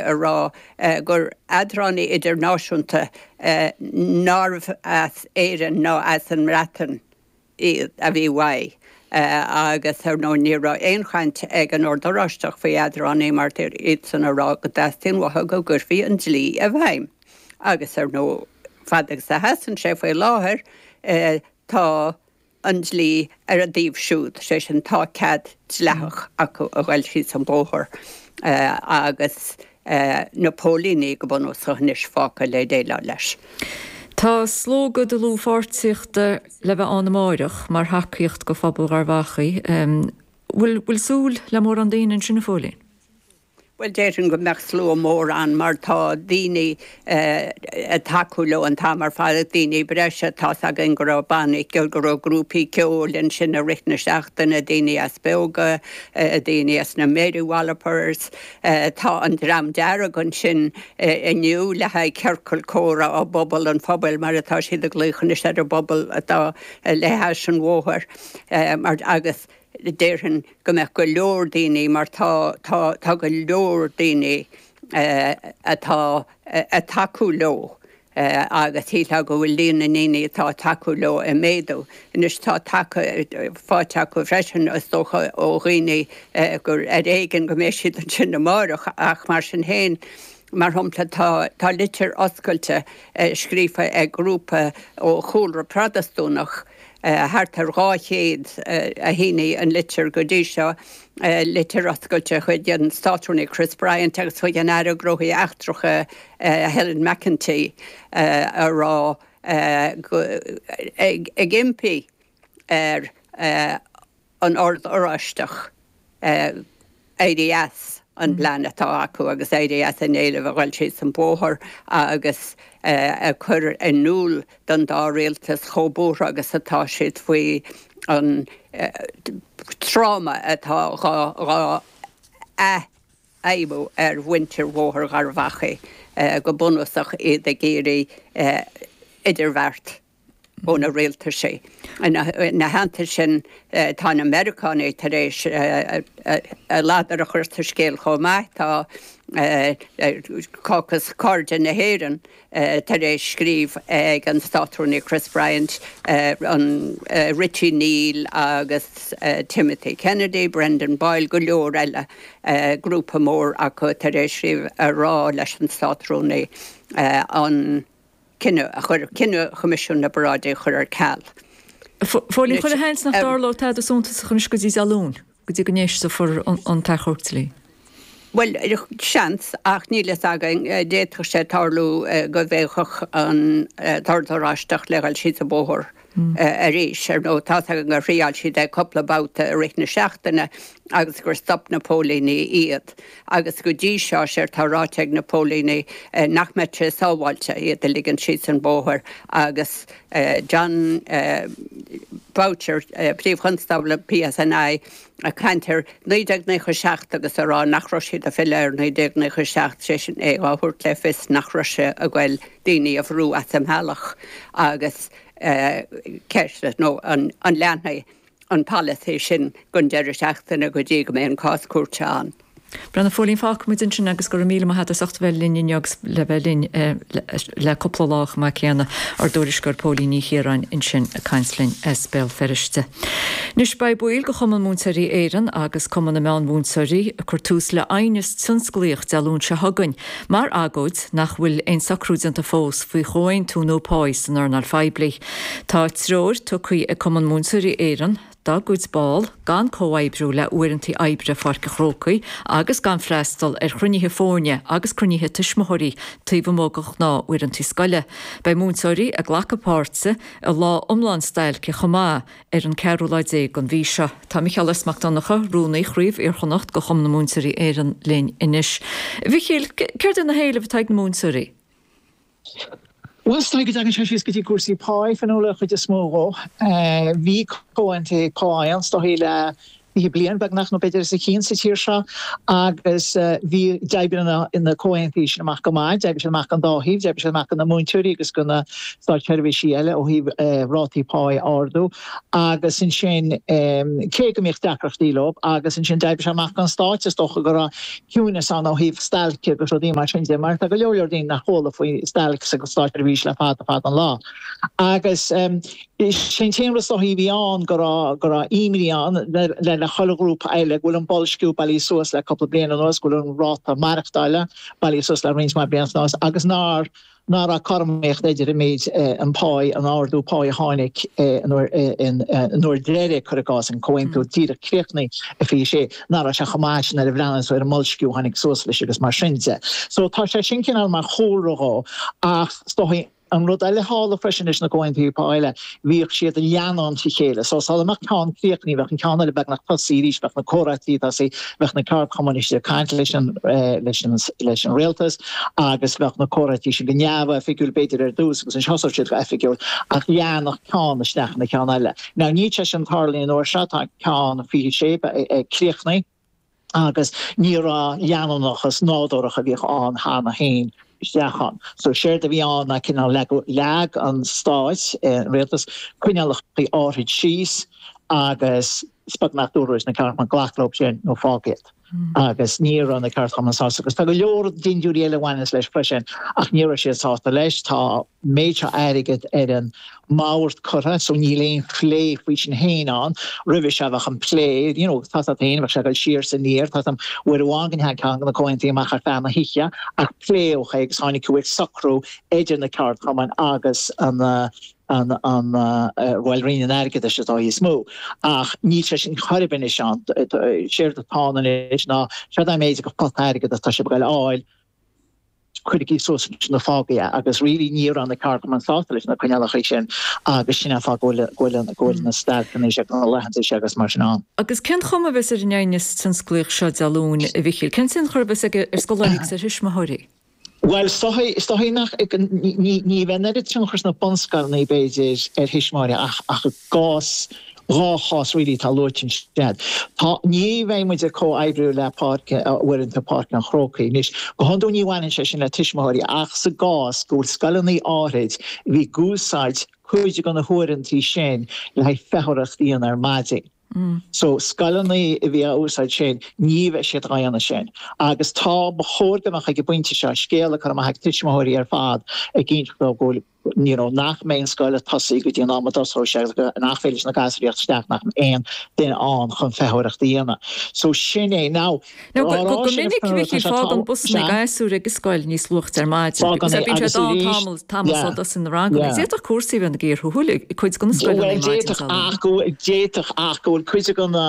a rá gur eadránaí idirnáisiúnta nárbh as Éirinn ná as an mBreatain iad a bhí uaidh agus, ar ndóigh, ní raibh aon chaint ag an Ord Oráisteach faoi eadránaí mar déarfadh iadsan a rá go dteastaíonn uathu go gcuirfí an dlí i bhfeidhm. Agus, ar ndóigh, fad agus a sheasann sé faoi láthair, tá. an dlí ar a dtaobh siúd, sé sin, tá cead dleathach acu a ghoil síos an bóthar agus na póilíní go bunúsach anois fágtha le déileáil leis. Tá slógadh dlúthpháirtíochta le bheith ann amáireach mar thacaíocht go Phobal Gharbh Achaidh. Bhfuil súil le mórán daoine ansin, a Phóilín? Bhuel, déarfainn go mbeadh slua mór ann mar tá daoine ag tacú leo an t-am ar fad, daoine breise. Tá's againn go raibh banna ceoil, go raibh grúpaí ceoil ansin i rith na seachtaine, daoine as Beoga, daoine as na Mary Wallopers. Tá an Dream Dearg ansin inniu le haghaidh ciorcal comhrá i bpobal an phobail mar atá siad ag glaoch anois ar an bpobal atá le hais an bhóthair agus, déarfainn go mbeadh go leor daoine mar tá tá tá go leor daoine atá ag tacú leo agus shílfeá go bhfuil líon na ndaoine atá ag tacú leo ag méadú. Anois tá tacaíocht fáite acu freisin is dócha ó dhaoine ar éigean go mbeidh siad ansin amáireach ach mar sin féin mar shompla tá tá litir oscailte scríofa ag grúpa ó chúlra Protastúnach Thart ar 200 a shínigh an litir go dtí seo, litir oscailte chuig an Státrúnaí Chris Bryant agus chuig an Aire Gnóthaí Eachtracha Helen McEntee a rá go, ag impí ar an Ord Oráisteach éirí as an bplean atá acu agus éirí as an éileamh a ghoil síos an bóthar agus a chur in iúl don dá rialtas chomh buartha agus atá siad faoi an tráma atá dhá athfheidhmiú ar mhuintir Bhóthar Gharbhachaidh, go bunúsach iad ag iarraidh idirbheart ó na Rialtaisí. Ina theannta sin, tá na Meiriceánaigh tar éis a ladar a chur sa scéal chomh maith. Tá Caucus Cairde na hÉireann tar éis scríobh ag an Státrúnaí Chris Bryant, Richie Neal agus Timothy Kennedy, Brendan Boyle, go leor eile, grúpa mór acu tar éis scríobh a rá leis an Státrúnaí an. cinneadh a chur cinneadh Choimisiún na bParáidí a chur ar ceal. Phóilín, chuile sheans nach dtarlóidh tada suntasach anois go dtí Dé Luain, go dtí go n-éistofar an t-achomharc dlí. Bhuel, seans, ach níl fhios againn. D'fhéadfadh sé tarlú go bhféachfadh an tOrd Oráisteach le gabháil síos an bóthar. arís. Ar ndóigh tá's againn gur thriáil siad é cúpla babhta i rith na seachtaine agus gur stop na póilíní iad. Agus go dtí seo, séard tá ráite ag na póilíní nach mbeadh sé sábháilte iad a ligint síos an bóthar agus Jon Boutcher, Príomh-Chonstábla PSNI, ag caint ar 1997 agus ag rá nach raibh siad ag filleadh ar 1997, sé sin é á thabhairt le fios nach raibh sé ag goil daoine a bhrú as an mbealach agus ceist nó an leanfaidh an polasaí sin gon deireadh seachtaine go dtí go mbeidh an cás cúirte ann. Breathnaigh, Phóilín, fágfaidh muid ansin agus go raibh míle maith a't as ucht bheith linn inniu agus le bheith linn le cúpla lá chomh maith céanna, ár dtuairisceoir Póilín Ní Chiaráin ansin ag caint linn as Béal Feirste. Anois beidh baill de Chumann Múinteoirí Éireann agus Cumann na Meán-Mhúinteoirí ag cur tús le aighneas tionsclaíoch Dé Luain seo chugainn mar agóid nach bhfuil aon socrú déanta fós faoi chomhaontú nua páí san earnáil phoiblí. Tá treoir tugtha ag Cumann Múinteoirí Éireann dá gcuid ball, gan comhoibriú le uaireantaí oibre Pháirc an Chrócaigh agus gan freastal ar chruinnithe foirne agus cruinnithe tuismitheoirí taobh amuigh de ghnáth uaireantaí scoile. Beidh múinteoirí ag glacadh páirte i lá iomlán stailce chomh maith ar an 4ú lá déag den mhí seo. Tá Micheál S. Mac Donnacha, Rúnaí Chraobh Iarchonnacht de Chumann na Múinteoirí Éireann linn anois. A Mhichíl, céard iad na héilimh atá ag na múinteoirí? Bhuel, is dóigh go dtagann sé síos go dtí cúrsaí pá, a Fhionnuala, an chuid is mó dhó. Bhí comhaontú pá ann is dóichí le fiche bliain beagnach nó b'fhéidir os a chionn sa tír seo agus bhí d'oibrigh na comhaontuithe sin amach go maith, d'oibrigh siad amach gon dá thaobh, d'oibrigh siad amach go na múinteoirí agus go na státseirbhísigh eile ó thaobh rátaí pá a ardú agus ansin cé go mbíodh deacrachtaí leo agus ansin d'oibrigh siad amach gon Stát is dócha go raibh ciúnas ann ó thaobh stailce agus rudaí mar sin de mar tá go leor leor daoine nach chuala faoi stailc sa státseirbhís le fada fada an lá agus sé an t-aon rud is dóichí a bhí ann go raibh go raibh imní ann le le chuile ghrúpa eile go bhfuil an boilsciú bailithe suas le cúpla bliain anuas go bhfuil an ráta maireachtála bailithe suas le roinnt mhaith blianta anuas agus nár ná raibh cothromaíocht idir an méid an páigh an ardú páigh a tháinig an uair an uair deiridh cuir i gcás an comhaontú díreach críochnaithe i fiche sé ná raibh sé chomh maith sin nuair a bhreathnaíos tú ar an mboilsciú tháinig suas leis agus mar sin de so tá sé sin cineál mar chúlra dhó ach is dóigh an rud eile tharla freisin leis na comhaontuithe pá eile bhíodh siad ag leanúint a chéile so sula mbeadh ceann críochnaí bheadh an ceann eile beagnach tosaí arís bheadh na comhráití tosaí bheadh na ceardchumainn ag caint leis an leis an leis an rialtas agus bheadh na comhráití sin go neamhoifigiúil b'fhéidir ar dtús agus ansin thosódh siad go oifigiúil ach leanadh ceann isteach sa gceann eile now níl sé sin ag tarlú an uair seo tá ceann 26 ag críochnaigh agus ní raibh an leanúnachas nádúrach a bhíodh ann cheana féin isteach ann. So séard a bhí ann ná cineál leagadh, leag an Stáit, an Rialtas, coinníollacha áithrid síos agus is beag nach ndúradh leis na ceardchumainn glac leo sin nó fág iad. Agus ní raibh na ceardchumainn sásta agus tá go leor dindiúirí eile a bhaineas leis freisin ach ní raibh siad sásta leis. Tá an méid seo airgid ar an mbord curtha so níl aon phlé faoi sin féin ann. Roimhe seo bheadh an plé you know tá a fhios agat féin bheadh sé ag dul siar is aniar tá a fhios agam uair amháin go ndeachaigh ceann de na comhaontuithe amach ar feadh na hoíche ach pléadh é agus tháinig go bhfuarthas socrú idir na ceardchumainn agus an an an bhuel Roinn an Airgeadais is dóigh is mó ach níl sé sin ar chor ar bith anois ann séard atá ann anois ná seo é an méid de phota airgid atá siad ag dul fháil Cuirigí suas nó fágaigí agus really ní raibh na ceardchumainn sásta leis na coinníollacha sin agus sin an fáth go bhfuil go bhfuil na stailceanna seo agus na laethanta seo agus mar sin ann. Agus cén chuma a bheas ar an ngníomh tionsclaíoch seo Dé Luain, a Mhichíl? Cén tionchar a bheas aige ar scoláirí agus ar thuismitheoirí? Bhuel, is dóigh nach ní bheidh an oiread tionchair sna bunscoileanna b'fhéidir ar thuismitheoirí ach i gcás Dhá chás really atá luaite ansin. Tá, ní bheidh muid ag comhoibriú le Páirc, Uaireanta Páirc an Chrócaigh. Anois, go hiondúil ní bhaineann sé sin le tuismitheoirí ach sa gcás go bhfuil scoileanna áithrid a bhí ag úsáid cuid de na huaireanta sin le haghaidh feitheoireacht a dhéanamh ar maidin. So, scoileanna a bhí á úsáid sin, ní bheidh siad á dhéanamh sin. Agus tá, ba chóir go mbeadh ag an bpointe seo, scéala curtha amach chuig tuismitheoirí ar fad ag inse dóibh go bhfuil, you know, nach mbeidh an scoil ag tosaigh go dtí an am a dtosóidh sé agus nach féidir leis na gasraíocht isteach nach mbeidh aon duine ann chun feitheoireacht a dhéanamh. So sin é. Now, Now, dá go, go, raibh go sé ina minic scéal, bhí, tá sé chiall, fág an tall, bus ina ag sea? gasúir ag an scoil níos luaite ar maidin Fág because an é bíonn sé agus dán arís, tamall, tamall yeah, sásta in a rang agus yeah. d'fhéadfadh cúrsaí a bheith ina gcíor shúil ag cuid de na scoileanna Bhuel, an maidin d'fhéadfadh, seo. ach go bhfuil, d'fhéadfadh, ach go bhfuil cuid de na,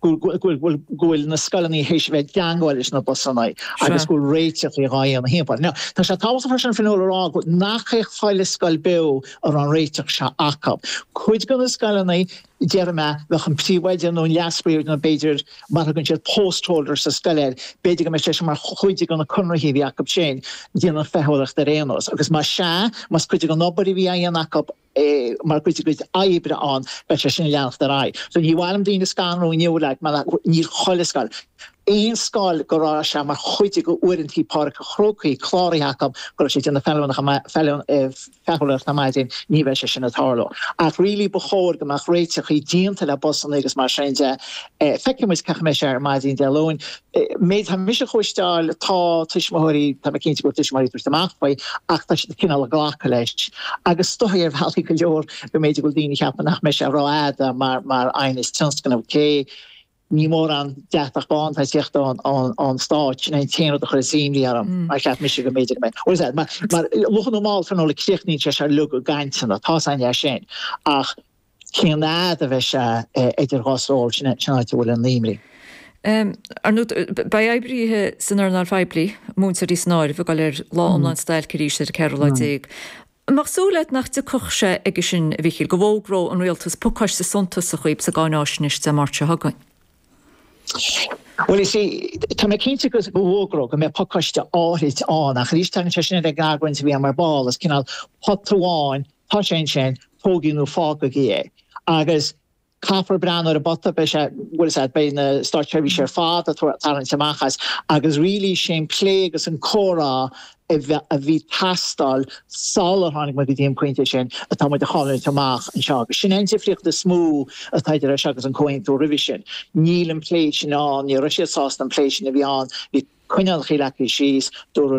go bhfuil na scoileanna théis a bheith ag teangmháil leis na busanna agus go bhfuil réiteach dhá dhéanamh timpeall air. Now, tá sé tábhachtach freisin Fionnuala a rá go nach é chuile scoil a raibh an réiteach seo acu. Cuid de na scoileanna déarfaidh mé bheadh an príomhoide nó an leas-phríomhoide nó b'fhéidir mar thugann siad post holder sa scoil air, b'fhéidir go mbeadh sé sin mar chuid de na conraithe a bhí acu sin, déanamh feitheoireachta ar aon nós agus má sea, más cuid den obair a bhí á dhéanamh acu, mar chuid dá gcuid oibre ann, beidh sé sin ag leanacht ar aghaidh. So ní mhaith liom daoine a scanrú inniu like mar níl chuile scoil, aon scoil go raibh sé mar chuid de uaireantaí Páirc an Chrócaigh cláraithe acu go raibh siad ag déanamh feitheoireacht ar maidin ní bheidh sé sin ag tarlú. Ach really ba chóir go mbeadh réiteachaí déanta le busannaí agus mar sin de. Feicfidh muid cén chaoi a mbeidh sé ar maidin Dé Luain. an méid atá mise a chloisteáil, tá tuismitheoirí, tá mé cinnte go bhfuil tuismitheoirí ag tabhairt amach faoi ach tá siad cineál ag glacadh leis agus is dóigh ar bhealaí go leor go mb'fhéidir go bhfuil daoine ag ceapadh nach mbeidh sé rófhada mar, mar aighneas tionsclaíoch cé ní mórán deatach bán atá ag teacht ón, ón, ón Stáit, sin é an t-aon rud a chuireas imní orm mar cheap mise go mb'fhéidir go mbeidh, what is that, mar, mar luath nó mall tar an, críochnaíonn sé seo, uilig i gcainteanna, tá a fhios againn é sin ach. Cén fhaid a bheidh sé idir dhá stól? Sin an áit a bhfuil an imní. Ar ndú, beidh oibrithe san earnáil phoiblí, múinteoirí san áireamh, ag dul ar lá iomlán stailce arís ar an 14ú lá. An mbeadh súil agat nach dtiocfadh sé aige sin, a Mhíchíl, go bhfógródh an Rialtas pacáiste suntasach dhaoib sa gcáináisnéis Dé Máirt seo chugainn? Bhuel, is é, tá mé cinnte go bhfógródh, go mbeadh pacáiste áithrid ann. Ach arís, tagann sé sin ar an gcaint a bhí againn ar ball. Is cineál pota amháin Tá sé ansin, tógaigí nó fágaigí é. Agus caithfear breathnú ar an bpota, beidh sé, bhuel, is ea, beidh na státseirbhísigh ar fad ag tarraingt amach as agus really sé an plé agus an comhrá a bhí ag teastáil sular tháinig muid go dtí an pointe sin atá muid a chailliúint amach anseo agus sin an difríocht is mó atá idir é seo agus an Comhaontú roimhe sin. Níl an plé sin ann, ní raibh siad sásta an plé sin a bheith ann, bhí coinníollachaí leagtha síos, dúradh leo.